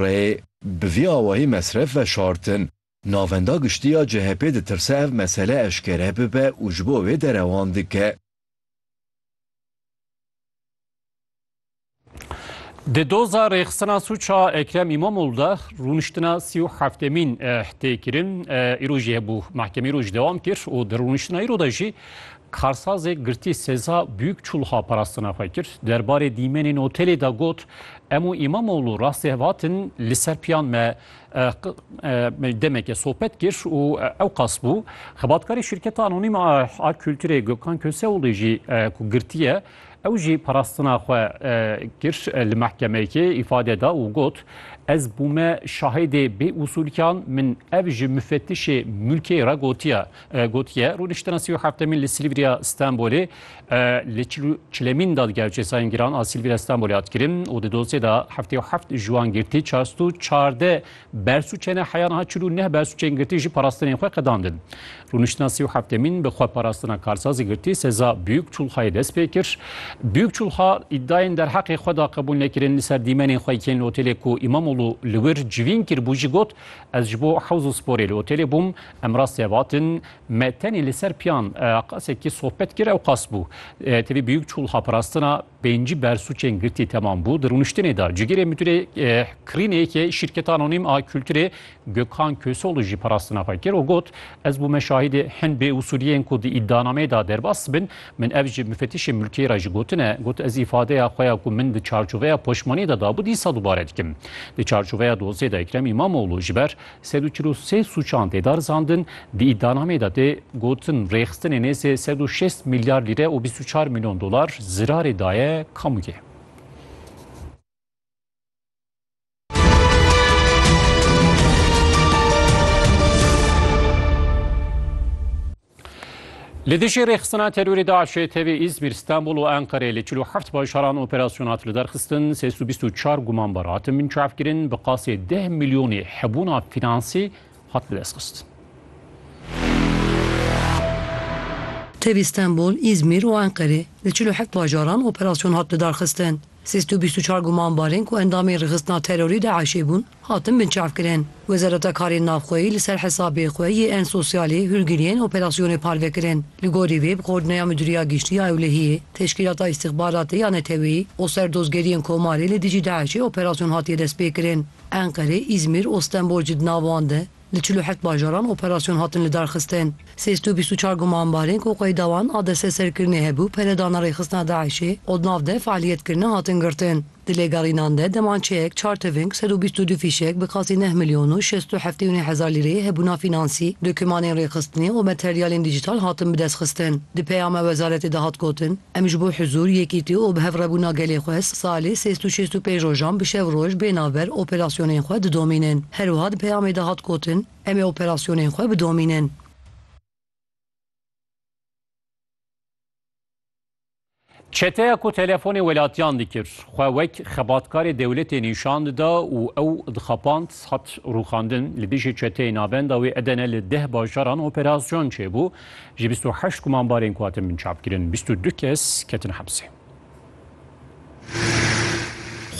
Rê bi vî awayî mesref veşartin. Navenda Giştî ya CHP'ê ditirse ev mesele eşkere bibe û ji bo wê derewan dike. Di doza rêxistina sûca Ekrem Îmamoglû de rûniştina sî û heftêmîn tê kirin. Îro jî hebû. Mehkemeyê roj dewam kir û di rûniştina îro de jî Karsazê girtî seza Büyük Çulha parastina xwe kir. Der barê dîmenên otelê de got, Em û Îmamoğlu rastê vatin li ser piyan me demeke sohbet kir û ewqas bû. Xebatkarê şîrketa anonîm a a kulturê Gökhan Köseoğlu jî ku girtî ye, ew jî parastina xwe kir li mehkemeyekê îfade da û got, Ez bûme şahidê bêusûlkan, min ev ji mufetişê mulkê re gotiye. Gotiye, rûniştina sî û heftemîn li Silivriya Stenbolê li çil û çilemîn dadger û cezayên giran a Silivriya Stenbolê hat kirin û di dosyê de heftê û heft ji wan girtî çar sed û çardeh bersûçe ne heya niha çil û neh bersûçeyên girtî jî parastinên xwe qedandin. Rûniştina sî û heftemîn bi xwe parastina karsazê girtî seza Büyükçulhayê dest pê kir. Büyükçulha îdayên derheqê xwe da qebûl nekirin li ser dîmenên xwe yên li otelê ku Îmamoglu li wir civîn kiribû jî got, Ez ji bo hewz û sporê li otelê bûm, Em rastî ev atin. Me tenê li ser piyan qasekî sohbet kir, ew qas bû. Tevî biyûk çû wiha parastina pêncî bersûcên girtî temam bû. Di rûniştinê de cigirê mudîrê kirînê yekê şîrketa anonîm a kulturê Gökhan Köseoğlu jî parastina xwe kir û got, Ez bû me şahîdê hin bêusûliyên ku di îdianameyê de derbas dibin. Min ev ji mufetişê mulkiyê re jî gotine. Got, Ez îfadeya xwe ya ku min di çarçoveya poşmaniyê de dabû dîsa dubare dikim. Di çarçoveya dosiyê de Ekrem Îmamoğlu ji ber Sed û çil û sê sûcan tê darizandin, di îdianameyê de tê gotin rêxistinê nêzî sed û şêst milyar lîre û bîst û çar milyon dolar zirarê daye kamûyê. Li dijî rêxistina terorê DAIŞê tevî Îzmîr, Stenbol û Enqereyê li çil û heft bajaran operasyon hat liderxistin, sê sed û bîst û çar gumanbar hatin binçavkirin, bi qasê deh milyonê hebûna fînansî hat bidestxistin. Tevî Stenbol, Îzmîr û Enqerê li çil û heft bajaran operasyon hat lidarxistin. Sê sed û bîst û çar gumanbarên ku endamên rixistina terorî DAIŞ'ê bûn, hatin binçavkirin. Wezareta Karên Navxweyî li ser hesabê xwe yê en sosyalê hûrgiriyên operasyonê parve kirin. Li gorî vê bi Xordneya Midûriya Giştî ya Ewlehiyê, Teşkîlata Îstixbaratê ya Neteweyî û Serdozgeriyên Komarê li dijî DAIŞ'ê operasyon hatiye destpêkirin. Enqere, Îzmîr û Stenbol jî di nav wan de Li çil û heft bajaran operasyon hatin lidarxistin. Sê sed û bîst û çar gumanbarên ku qeyda wan a desteserkirinê hebû peredana rêxistina DAIŞ'ê û di nav de fealiyet kirine hatin girtin. Di lêgerînan de demançeyek, çar tiving, sed û bîst û du fîşek bi qasî neh milyon û şêst û heftê û neh hezar lîreyê hebûna fînansî, dokûmanên rêxistinê û materyalên dîjîtal hatin bidestxistin. Di peyama wezaretê de hat gotin, Em ji bo huzûr, yekîtî û bihevrebûna gelê xwe salê sêst û şêst û pênc rojan bi şev roj bê navber operasyonên xwe didomînin. Her wiha di peyamê de hat gotin, Em ê operasyonên xwe bidomînin. Çeteya ku telefonê welatiyan dikir, xwe wek xebatkarê dewletê nîşan dida û ew dixapand, hat rûxandin. Li dijî çeteyê navenda wê Edene li deh bajaran operasyon çêbû. Ji bîst û heşt gumanbarên ku hatin binçavkirin bîst û du kes ketin hepsê.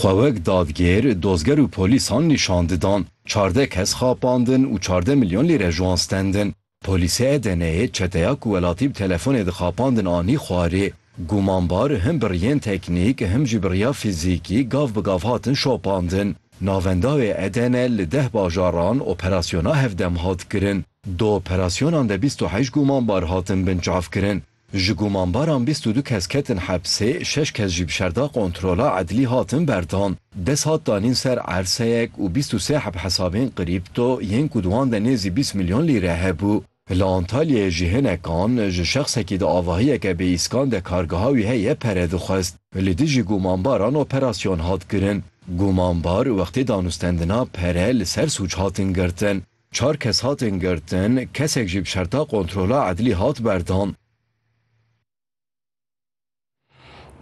Xwe wek dadgêr, dozger û polîsan nîşan didan. Çardeh kes xapandin û çardeh milyon lîre ji wan stendin. Polîsê Edeneyê çeteya ku welatî bi telefonê dixapandin anî xwarê. Gumanbar him bi riyên teknîk him jî bi riya fîzîkî gav bi gav hatin şopandin. Navenda wê Edene li deh bajaran operasyona hevdem hat kirin. Di operasyonan de bîst û heşt gumanbar hatin binçavkirin. Ji gumanbaran bîst û du kes ketin hepsê, şeş kes jî bi şerda kontrola edlî hatin berdan. Dest hat danîn ser erseyek û bîst û sê heb hesabên krîpto yên ku di wan de nêzî bîst milyon lîre hebû. Li Antalyayê jî hinekan ji şexsekî di avahiyeke bê îskan de kargeha wî heye pere dixwest. Li dijî gumanbaran operasyon hat kirin. Gumanbar wextê danûstendina pere li ser sûc hatin girtin. Çar kes hatin girtin, kesek jî bi şerta kontrola edlî hat berdan.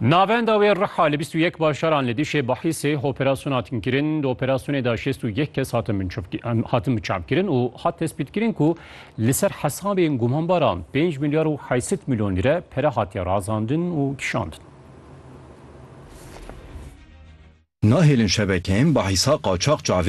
Navenda wê Riha li bîst û yek bajaran li dijî Bahîsê operasyona hatin kirin. Di operasyonê de şêst û yek kes hatin binçavkirin hatin biçavkirin û hat tespîtkirin ku li ser hesabên gumanbaran pênc milyar û heşt sed milyon lîre pere hatiye razandin û kişandin. Nahêlin şebekeyên Bahîsa qaçax çavên